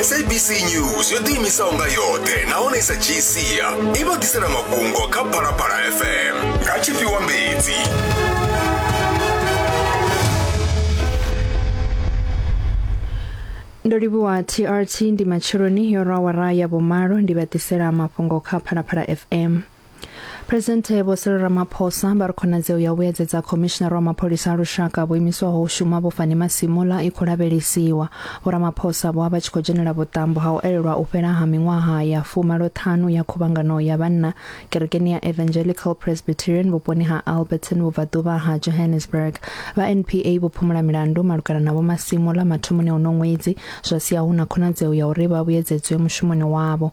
sabc news yo ḓiimisaho nga yoṱhe nahone i sa dzhii sia i vha ḓisela mafhungo kha phalaphala fm nga tshifhiwa mbedzi ndo livhuwa trt ndi matsheloni yo rwa wara ya vhumalo ndi vha ḓisela mafhungo kha phalaphala fm Phresidennde Vho Cyril Ramaphosa vha ri khonadzeo ya u vhuyedzedza khomishinara wa mapholisa a lushaka vho imiswaho u shuma vho Fani Masimula i khou lavhelesiwa. Vho Ramaphosa vho vha vha tshi khou dzhenela vhuṱambo ha u elelwa u fhela ha miṅwaha ya fumaloṱhanu ya khuvhangano ya vhanna kerekeni ya Evangelical Presbyterian vhuponi ha Alberton vhubvaḓuvha ha Johannesburg. Vha NPA vho phumula milandu malugana na Vho Masimula mathomoni a uno ṅwedzi zwa sia hu na khonadzeo ya uri vha vhuyedzedzwe mushumoni wavho.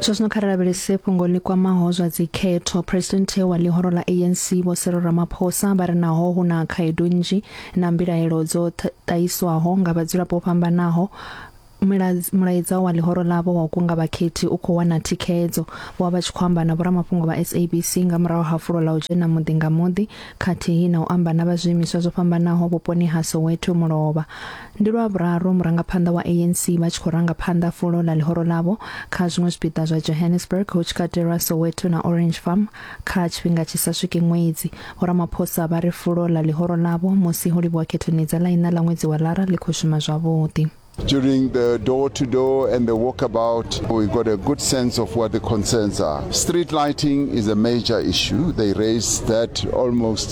Zwazwino kha ri lavhelese fhungo ḽi kwamaho zwa dzikhetho. Presidenthe wa ḽihoro ḽa ANC Vho Cyril Ramaphosa vha ri naho hu na khaedu nnzhi na mbilaelo dzo ṱahiswaho nga vhadzulapo fhambanaho mulaedza wa ḽihoro ḽavho wa u kunga vhakhethi u khou wana thikhedzo. Vho vha tshi khou amba na vhoramafhungo vha SABC nga murahu ha fulo ḽa u dzhena muḓi nga muḓi khathihi na u amba na vha zwiimiswa zwo fhambanaho vhuponi ha Soweto Mulovha. Ndi lwa vhuraru murangaphanḓa wa ANC vha tshi khou ranga phanḓa fulo ḽa ḽihoro ḽavho kha zwiṅwe zwipiḓa zwa Johannesburg hu tshi katelwa Soweto na Orange Farm kha tshifhinga tshi sa swiki ṅwedzi. Vho Ramaphosa vha ri fulo ḽa ḽihoro ḽavho musi ho livhuwa khethoni dza ḽa iṋa ḽa ṅwedzi wa Lara ḽi khou shuma zwavhuḓi. During the door to door and the walkabout, we got a good sense of what the concerns are. Street lighting is a major issue. They raised that almost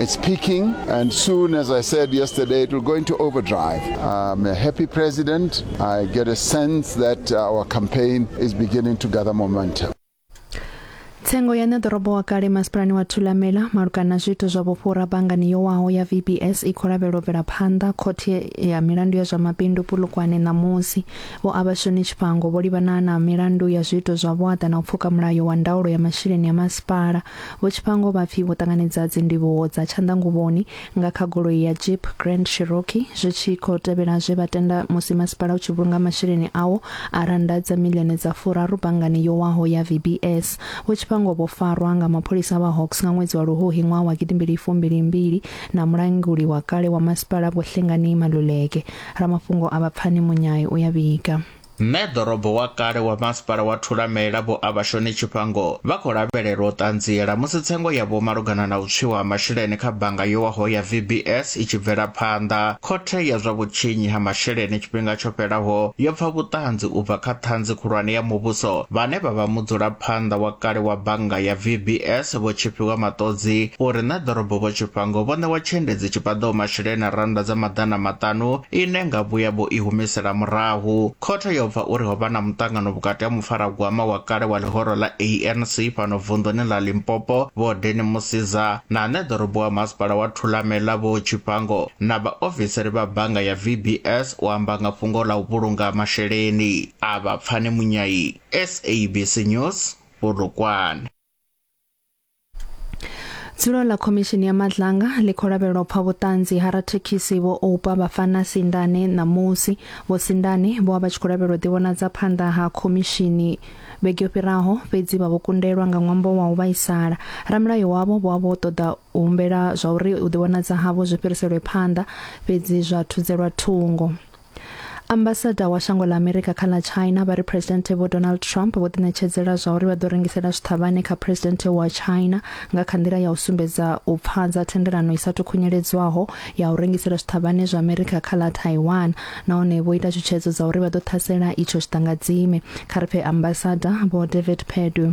It's peaking, and soon, as I said yesterday, it will go into overdrive. I'm a happy president. I get a sense that our campaign is beginning to gather momentum. tsengo ya ṋeḓorobo wa kale masipalani wa thulamela malugana na zwiito zwa vhufhura bangani yo waho ya vbs i khou lavhelwa u bvela phanḓa khothe ya milandu ya zwa mabindu pulukwane ṋamusi vho avhashoni tshifhango vho livhana na milandu ya zwiito zwa vhuaḓa na u pfuka mulayo wa ndaulo ya masheleni ya masipala Vho Tshifhango vha pfi vho ṱanganedza dzindivhuwo dza tshanḓanguvhoni nga kha goloi ya Jeep Grand Cherokee zwi tshi khou tevhela zwe vha tenda musi masipala u tshi vhulunga masheleni awo a rannda dza miḽioni dza furaru banngani yo waho ya VBS. Vho Tshifhango vho farwa nga mapholisa vha Hawks nga ṅwedzi wa Luhuhi ṅwaha wa gidimbili fumbili mbili na mulanguli wa kale wa masipala Vho Hlengani Maluleke. Ramafhungo a vha pfani munyai u ya vhiga. Mme ḓorobo wa kale wa masipala wa Thulamela Vho Abashoni Tshifhango vha khou lavhelelwa u ṱanziela musi tsengo yavho malugana na u tswiwa ha masheleni kha bannga yo waho ya VBS i tshi bvela phanḓa. Khothe ya zwa vhutshinyi ha masheleni tshifhinga tsho fhelaho yo pfa vhuṱanzi u bva kha Ṱhanzi Khulwane ya Muvhuso vhane vha vha mudzulaphanḓa wa kale wa bannga ya VBS Vho Tshifhiwa Maṱodzi uri Mme ḓorobo Vho Tshifhango vho ṋewa tshiendedzi tshi paḓaho masheleni a rannda dza maḓana maṱanu ine nga vhuya vho i humisela murahu. Khothe yo bva uri ho vha na muṱangano vhukati ha mufaragwama wa kale wa ḽihoro ḽa ANC fhano vunḓuni ḽa Limpopo Vho Danny Mosiza na ane ḓorobo wa masipala wa Thulamela Vho Tshifhango na vhaofisiri vha bannga ya VBS u amba nga fhungo ḽa u vhulunga masheleni a vha Pfani Munyai, SABC News, Polokwane. Dzulo ḽa khomishini ya madlanga ḽi khou lavhelwa u pfa vhuṱanzi ha rathekhisi vho Oupa Bafana Sindane ṋamusi. Vho Sindane vho vha tshi khou lavhelwa u ḓivhonadza phanḓa ha khomishini vhege yo fhiraho fhedzi vha vho kundelwa nga ṅwambo wa u vhaisala. Ramulayo wavho vho vha vho ṱoḓa u humbela zwa uri u ḓivhonadza havho zwi fhiriselwe phanḓa fhedzi zwa thudzelwa thungo. ambasada wa shango ḽa amerika kha ḽa china vha ri presidente vho donald trump vho ḓiṋetshedzela zwa uri vha ḓo rengisela zwiṱhavhane kha presidente wa china nga kha nḓila ya u sumbedza u pfadza thendelano i sa tukhunyeledzwaho ya u rengisela zwiṱhavhane zwa amerika kha ḽa taiwan nahone vho ita tshutshedzo dza uri vha ḓo ṱhasela itsho tshiṱangadzime kha ri pfe ambasada vho david perdue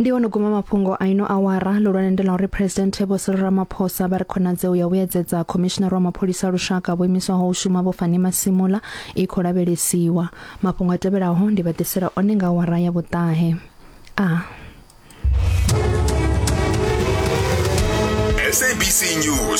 ndi ono guma mafhungo a ino awara lulwane ndi la uri presidente vho Cyril Ramaphosa vha ri khonadzeo ya vhuyedzedza commissioner wa mapholisa lushaka vho imiswaho u shuma vho Fani Masimula i khou lavhelesiwa mafhungo a tevhelaho ndi vha ḓisela one nga awara ya vhuṱahe a ah. SABC News